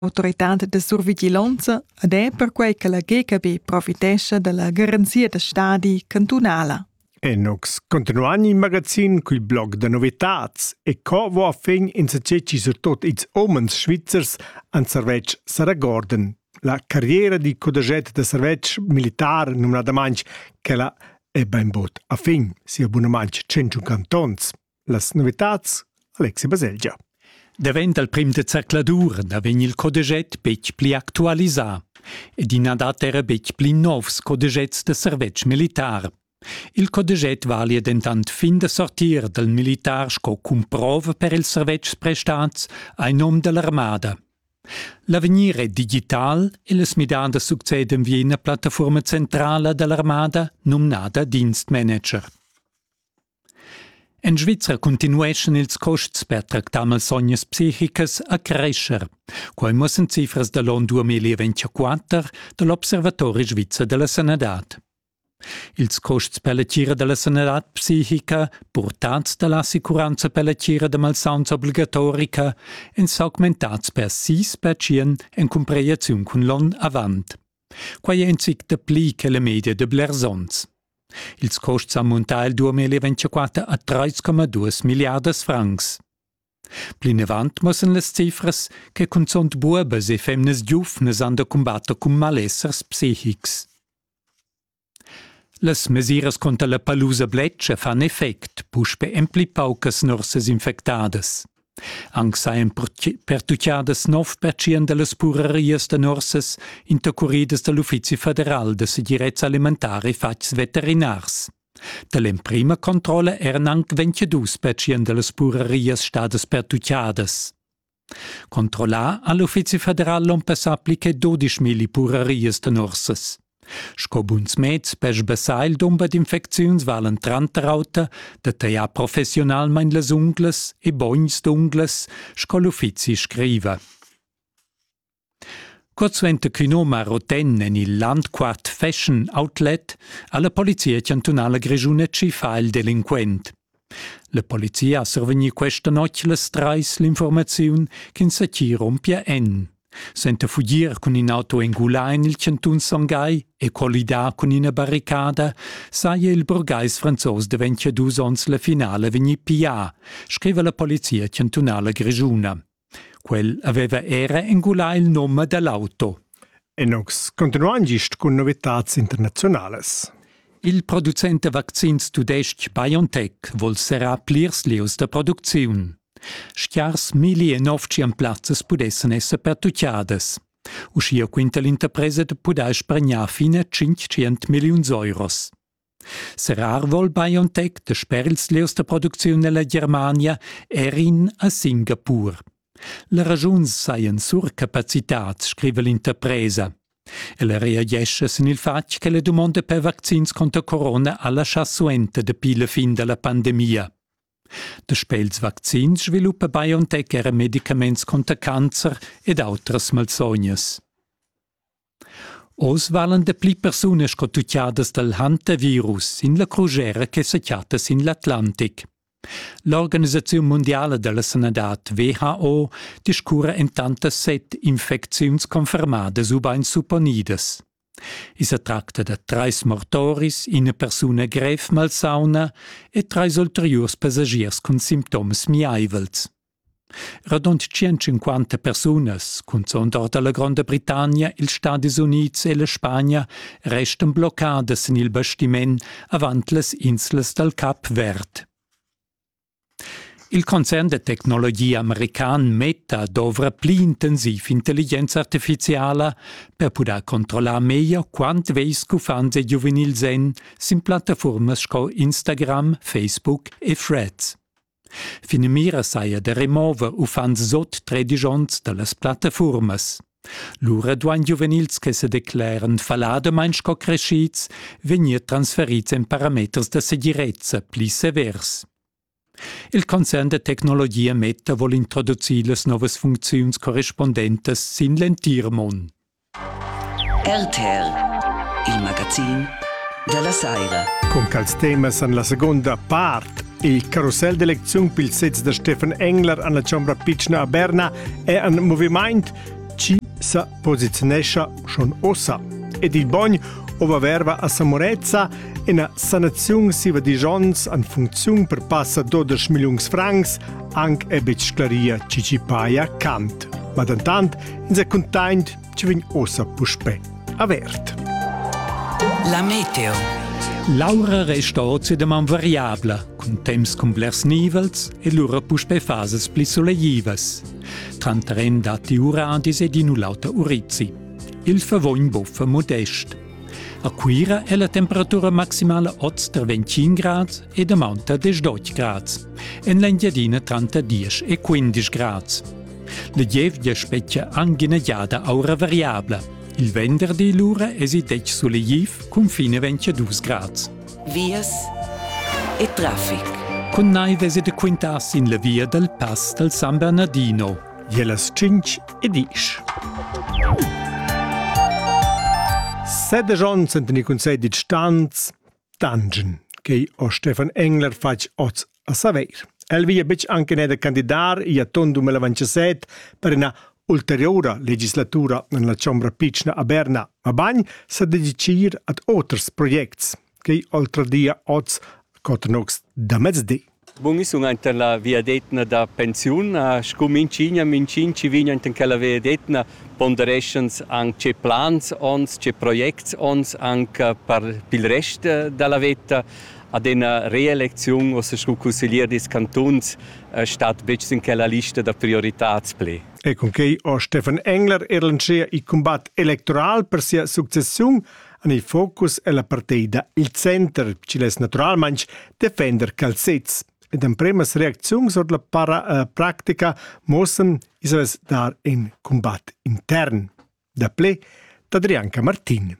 autoritad da survigilonza ed è perquai che la GKB profitescha dalla garanzia da stadi cantunala. Enox, continuan il magazin cul blog da novitats e co vo a fin insatgeci surtot ils homens svizzers an servetsch Saragorden. La carriera di codaget da servetsch militar numnadamain che la è bainbot a fin, sia abunamant 100 cantons. Las novitads Alexi Baselgia. Davent dal prim de zercladur da vegn il codeget betg pli actualisà ed i na dat era betg pli novs codegets da servetsch militar. Il codeget valia dentant fin da sortir dal militar sco cumprova per ils servetschs prestats ai nom dell'armada. L'avegnir è digital e las midadas succedan vi ina plattaforma centrala dell'armada numnada Dienstmanager. En Svizra cuntinueschan ils custs per tractar malsognas psichicas a crescher. Quai muossan cifras da l'on 2024 da l'Observatori svizzer della sanadad. Ils custs per la tgira della sanadad psichica, portats dalla assicuranza per la tgira da malsauns obligatorica, en s'augmentats per sis percient en cumpreaziun cun l'onn avant. Quai è in zic dapli che la media da blers onns. Ils custs han muntà il 2024 a 3,2 milliardas francs. Plinavant mussan las cifras che cunzunt buobas e femnas giuvnas han da cumbatter cun malessers psichics. Las mesiras cunter la palusa bletscha fan effect puspe en pli paucas nursas infectadas. Anc sajan pertuccadas nov pertschient da las purerias da nursas intercuridas da l'Uffizi federal da segirezza alimentara e fatgs veterinars. Da l'emprima controlla eran anc 22 pertschient da las purerias stadas pertuccadas. Controllà ha l'Uffizi federal l'on passà pli che 12 milli purerias da nursas. Sco buns meds per sbassar il dumber d'infecziuns valen tranter auter da tagliar professionalmain las unglas e bogns d'unglas, sco l'uffizi scriva. Cuorsuenter ch'ün hom ha roten en il Landquart Fashion Outlet ha la polizia chantunala grischuna tschiffà il delinquent. La polizia ha survegni questa notg las trais l'informaziun ch'ins sa chi rompia en. Senta fugir cun in auto engulà en il chantun Songhai e collidà cun ina barricada, saja il burgais franzos daventia dus onns la finale vegnì piglià, scriva la polizia chantunala grischuna. Quel aveva era engulà il num dall'auto. Enox, continuain gist cun novitads internaziunalas. Il producent da vaccins tudestg BioNTech vol serrar plirs lieus da producziun. Schiars milli e novcian plazzas pudessan esser pertucciadas. Uschia quinta l'interpresa da pudair spargnar fine 500 milliuns euros. Serar vol BioNTech da sper ils lieus da producziun nella Germania er in a Singapur. La ragiun sajan surcapacitats, scriva l'interpresa. Ella reagescha sin il fatg che la dumonda per vaccins conter corona ha laschà suenter dapi la fin da la pandemia. Da spels vaccins sviluppa BioNTech era medicaments conter cancer ed autras malsognas. Oz valan dapli persunas sco tutgadas dal hantavirus sin la crusera che sa chatta sin l'Atlantic. L'organisaziun mundiala da la sanadad WHO discurra entant da set infecziuns confermadas ubain supponidas. I sa tracta da trais mortoris, ina persuna grev malsauna e trais ulteriurs passagiers cun sintoms miaivels. Radund tschient-cinquanta persunas, cunzunt ord la Gronda Britannia, ils Stadis Unids e la Spagna, restan bloccadas en il bastiment avant las inslas dal Cap Verd. Il concern da tecnologia american Meta dovra pli intensiv intelligenza artificiala per pudair controllar meglio quant vegls uffants e giuvenils èn sin plattafurmas sco Instagram, Facebook e Threads. Finamira saja da remover uffants sot tredisch onns da las plattafurmas. Lura duain giuvenils che se decleran falladamain sco crescids vegnir transferids en parameters da segirezza pli severs. Il concern da tecnologia Meta vuol introducir las novas funcziuns correspondentas sin l'entir mund. RTL, il magazin della saira. Con quels temas en la seconda part Il carousel d'eleziun pil sez da Stefan Engler an la Chombra Pitschna a Berna è en moviment, chi sa posizionescha schon ossa. Ed il bogn ova verva a Samorezza ina sanaziun siva disch ons an funziun per passa 12 milliuns francs anc è betg sclaria ci ci paia cant. Ma dentant ins è cuntaint ci vegn ossa puspè avert. La meteo. L'aura resta occidem am variabla, cun temps cun blers nivels e lura puspè fases pli soleivas. Tranter en datti uradis ed in u l'auter urizi. Il favogn buffa modest. A Cuira è la temperatura maximala oz tra 25 grads ed aumenta 18 grads, en l'Engiadina tranter 10 e 15 grads. La gievgia spetgia anc ina giada aura variabla. Il venderdi lura èsi detg sulegl cun fine 22 grads. Vias e traffic. Cun naiv esi de quintar sin la via dal pass dal San Bernardino, via las 5 e 10. Sede Johnson den i consegli stanz Dungeon ch'ei ho Stefan Engler fatg oz a Saveir. El veglia betg anche neder candidar i atton 2027 per ina ulteriura legislatura en la chombra pitschna a Berna, mabain sa dedicir ad oters projects ch'ei oltre dia oz cotnox da mezdi. Bun, io sun aint en la viadetna da pensiun. Scu minchigna, minchin chi vegn aint in quella viadetna pondereschans anc tge plans ons, tge projects ons anc per pil rest da la veta. Ad ena reelecziun ossa scu cusseglier dils cantuns stat betg sin quella lista da prioritads pli. E cunquei ho Stefan Engler er lantschea il cumbat electoral per sia successiun En il focus è la partida il center, ch'igl è naturalmain defender calzets. Ed empremas reacziuns ord la para eh, practica mossen islas dar in cumbat intern. Da ple d'Adrianca Martin.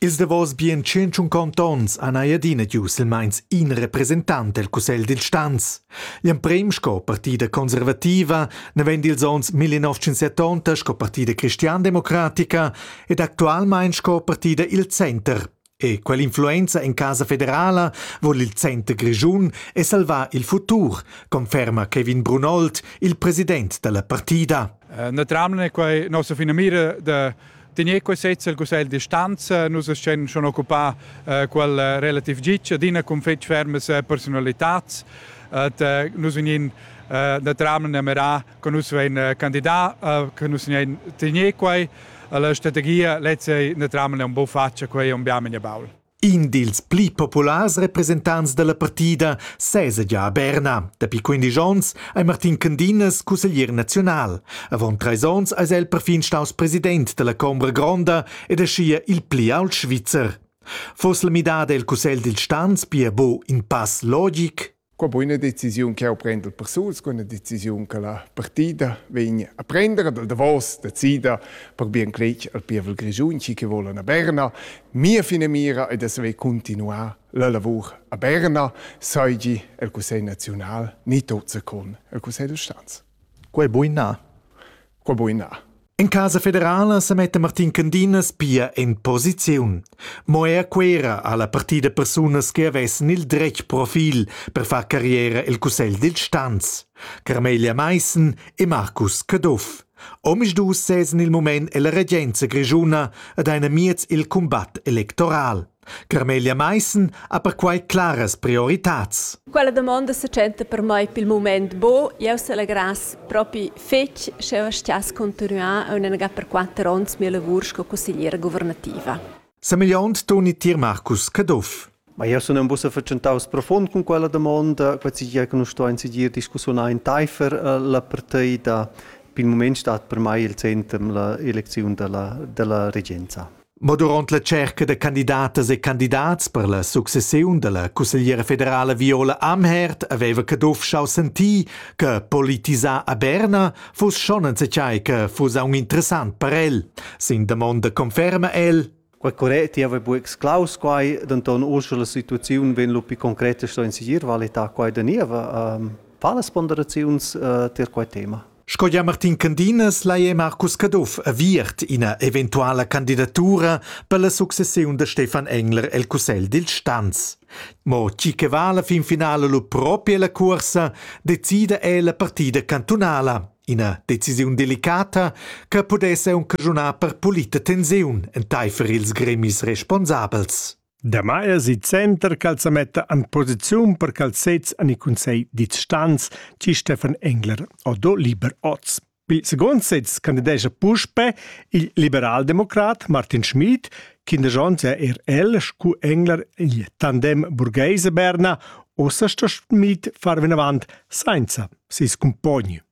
Ils davos bien 150 onns han ei adina giu silmeins in representant el cussegl dil stanz. Gl'emprem sco partida conservativa, naven dils onns 1970 sco partida cristiandemocratica ed actualmein sco partida il center. E quell'influenza en casa federala vuol il center grischun e salvar il futur, conferma Kevin Brunold, il president della partida. Eh, naturalmente è quei nostra finamira da tener quei sezz al Cussegl di stanza, nus schen schon occupà eh, quel relativ gic adina con fetg fermes eh, personalitats, et eh, nus vegnin eh, naturalmente a mirare che nus vein candidà, che nus vein tegnì quai. La strategia lezza è naturalmente un po faccia quei un biamo in baul. In dils pli populars representants dalla partida sesa già a Berna. Dapi 15 onns è Martin Candinas cusseglier nazional. Avant treis onns è el perfin staus president della Combra Gronda ed è scia il pli ault Svizzer. Foss la midada el cussegl dil stans pia bo in pass logic? Qua po ina decisiun che jau prenda per suls, qua ina decisiun che la partida vegn a prendere dal Davos, decida per bien cletg al pievel grischun, chi che volan a Berna. Mia finamira è da saver continuar la lavur a Berna, sai gi el Cussegl naziunal ni tot con el Cussegl da Stanz. Quei buina. Quei buina. In casa federala se metta Martin Candinas pia in posiziun. Mo er quera ha la partida persunas che avessen il dretg profil per far carriera el Cussegl dil Stanz, Carmelia Meissen e Marcus Caduff. Omisdus sezzen il moment ella regenza grischuna ad eine miez il combat electoral. Carmelia Maissen ha perquai claras prioritads. Quella damonda se tschenta per mei pil mument bo. Jeu selegrass propi fetg sch'jeu stiass continuar aunenga per quatter onns mia lavur sco consigliera governativa. Semigliont Toni tier Marcus Caduff. Ma io sun in bussa vercentaus profund cun quella domanda, quasi gia che nus stuein seguir discussiun enteifer eh, la partida. Pil moment stat per mai il centrum la eleziun della, della regenza. Mo duront la tscherca da candidatas e candidats per la successiun dalla cussegliera federala Viola Amherd haveva Caduff schau sentir che politisar a Berna fuss schon enzatgei che fuss aunc interessant per el. Sin damonda conferma el: Quei correct, jeu hai buc exclaus quei, denton uschè la situaziun vegn lu pi concreta sto in segir valitar quei da nieva. Fa las ponderaziuns uh, tier quei tema? Sco gia Martin Candinas lai è Marcus Caduff aviert ina eventuala candidatura per la successiun da Stefan Engler el cussegl dil Stanz. Mo tgi che va alla fin finala lu propi ella cuorsa, decida è la partida cantunala. Ina decisiun delicata che pudesse aunc caschunar per pulita tensiun enteifer ils gremis responsabels. Damai es il center cha'l sa metta in posiziun per cha'ls sezs han il cunsegl distants, di Stefan Engler odo Liber oz. Il second sez candidescha puspe il liberaldemocrat Martin Schmid, quindesch onns è er el scu Engler il tandem burgheise Berna, ossa sto Schmid far vinavant sainza ses cumpogn.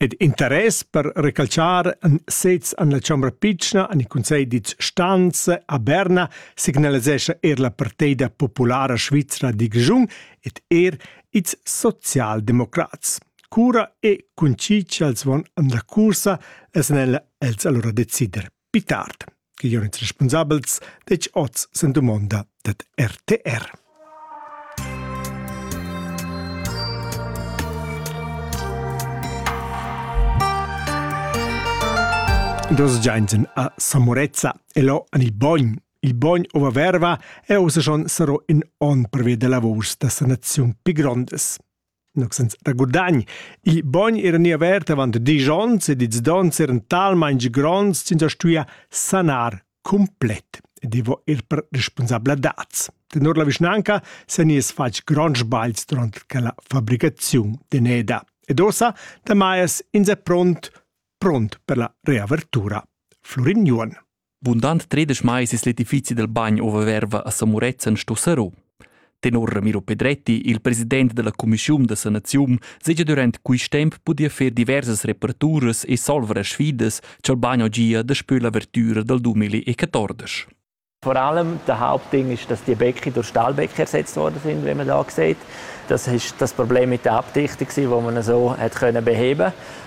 ed interess per recalciar sez en la chombra pitschna en il Cunsegl ditg Stanze a Berna signalisescha er la parteida populara svizra di Grischun ed er ils socialdemocrats. Cura e con chi ch'els van en la cursa, es el els allora decider. Pi tard che Jon ils responsabels detg oz sen dumonda dad RTR. Dos Giansen a Samorezza e lo an il bogn. Il bogn ova verva e osa schon sero in on per via de lavors da sanaziun pi grondes. Noc senza da gudagn. Il bogn era ni avert avant diesch onns ed ils donns eran talmain gronds ch'ins ha stuia sanar cumplet ed i va er per responsabladats. Tenor la vischnanca se nies fatg gronds sbagls durant quella fabricaziun d'eneda. Ed ossa da Maiers ins è pront, pront per la reavertura. Florin Juon. Bundant tredesch mais es l'edifizi dal bagn ova verva a Samurezzan sto serrò. Tenor Miro Pedretti, il president della Commissiun da sanaziun, segia durant quist temp pudia fer diversas reparaturas e solver a sfidas cha'l bagn gia daspö l'avertüra dal 2014. Vor allem der Hauptding ist, dass die Bäcke durch Stahlbäcke ersetzt worden sind, wie man da sieht. Das ist das Problem mit der Abdichtung, die man so hat können beheben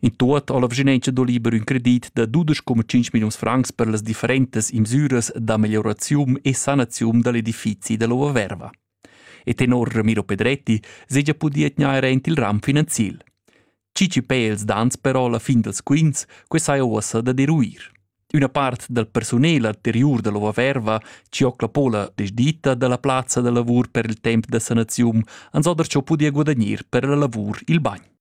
In tuot ha la Vischinanza do liber ün credit da 12,5 milliuns francs per las differentas imsüras da meglioraziun e sanaziun da l'edifizi da l'Ova Verva. E tenor Ramiro Pedretti seja pudì atgnair aint il ram finanziel. Cici Pels dans però la fin dals quints, que saja uossa da deruir. Üna part dal persunel anteriur da l'Ova Verva, Ciocla Pola, desditta dalla plazza da lavur per il temp da sanaziun, ans ha darciò pudì guadagnar per la lavur il bagn.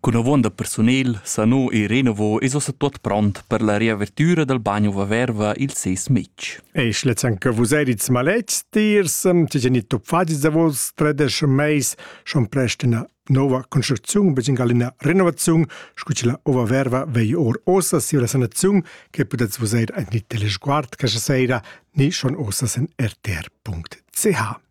Cun avonda persunel sano e renovo es ussa tuot pront per la riavertüra dal bagno Vaverva il ses metg. Eis lezenca vus edits malets tiers, ti genito fagis da vos tredesch meis schon prest ina nova construcziun beziun gal ina renovaziun scu che la ova verva vei or osa si la sanaziun che pudets vus eir anche teleguard questa sera ni schon osa sen rtr.ch